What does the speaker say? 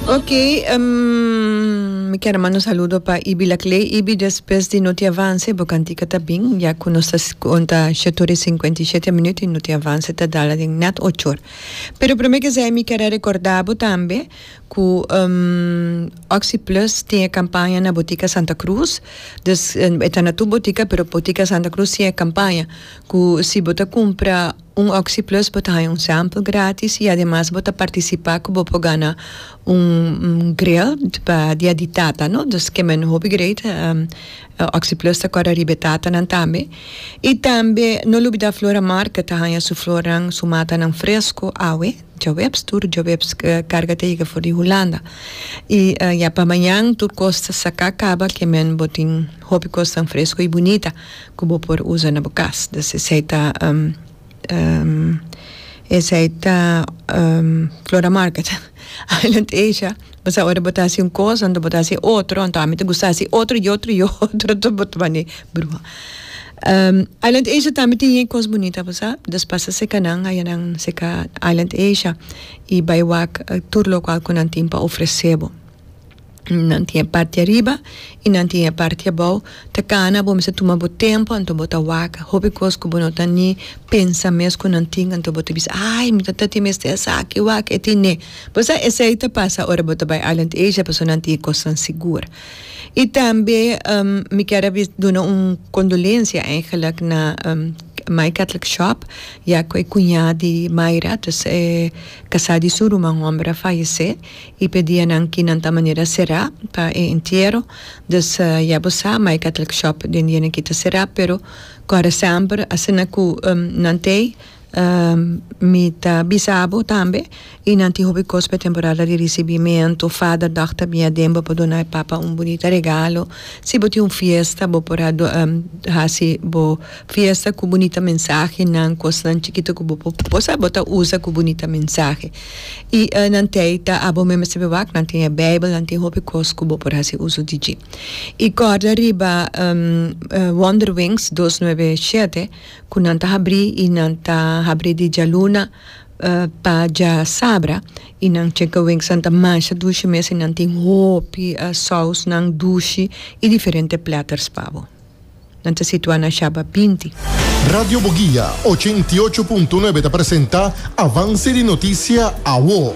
Ok mi kier a manda un saludo pa Ibi Laclay Ibi despues di no tin avance bo cantica ta bin ya cu nos ta conta shet ora y cincuenta y shete minuto y no tin avance ta dala den net ocho or pero prome que sea mi kier a recorda bo tambe cu oxi plus tin e campaña na Botica Santa Cruz dus e ta na tur botica pero Botica Santa Cruz tin e campaña cu si bo ta cumpra. Un OxyPlus bo ta haña un sample gratis y ademas bo ta participa cu bo por gana un grill pa dia di tata no dus ke men hopi great OxyPlus ta cora riba e tatanan tambe y tambe no lubida Flora Market ta haña su flornan su matanan fresco awe djaweps tur djaweps carga ta yega for di Hulanda y ya pa mañan tur cos ta saca caba ke men bo tin hopi cosnan fresco y bunita Ku bo por usa na bo kas. Dus esei ta esei ta Flora Market Island Asia bo sa ora bo ta hasi un kos anto bo ta hasi otro anto ami ta gusta hasi otro y otro y otro tur bo ta bani bruha Island Asia tambe tin e kos bunita bo sa dus pasa seka nan haya nan seka Island Asia y bai wak tur lokual ku nan tin pa ofrese bo. Nan tin e parti ariba y nan tin e parti abao ta cana bo mester tuma bo tempo anto bo ta wak hopi cos cu bo no ta ni pensa mes cu nan tin anto bo ta bisa ay mi tata tin mester esaki wak e tin nee bo sa esey ta pasa ora bo ta bay Island Asia pasobra nan tin e cosnan sigur y tambe mi ker a duna un condolencia eigenleck na My Catholic Shop ya cu e cuña di Myra casa di su ruman homber a fayece. I p'e dianan ki nan ta manera será pa e entiero, dus ya bo sa ma e Catholic Shop den dianan ki ta será, pero kòrda semper asina ku nan t'ei mi ta bisa bo tambe i nan tin hopi kos p'e temporada di risibimentu, Father Dòk ta bin aden bo por duna e Papa un bunita regalo, si bo tin un fiesta bo por a hasi bo fiesta ku bunita mensahenan, kosnan chikito ku bo por posa bo ta usa ku bunita mensahe. I e nan tei ta a bo member sebe wak, nan tin e Bijbel, nan tin hopi kos ku bo por hasi uso di dji. I kòrda riba Wonderwings dos nuebe shete ku nan ta habrí i nan ta habrí di djaluna pa dja sabra i nan chicken wingsnan ta masha dushi mes i nan tin hopi sòusnan dushi i diferente platters pa bo. Nan ta situá na Shaba binti. Radio Boguia ochenta i ocho punto nuebe ta presenta Avance di Noticia, Awo.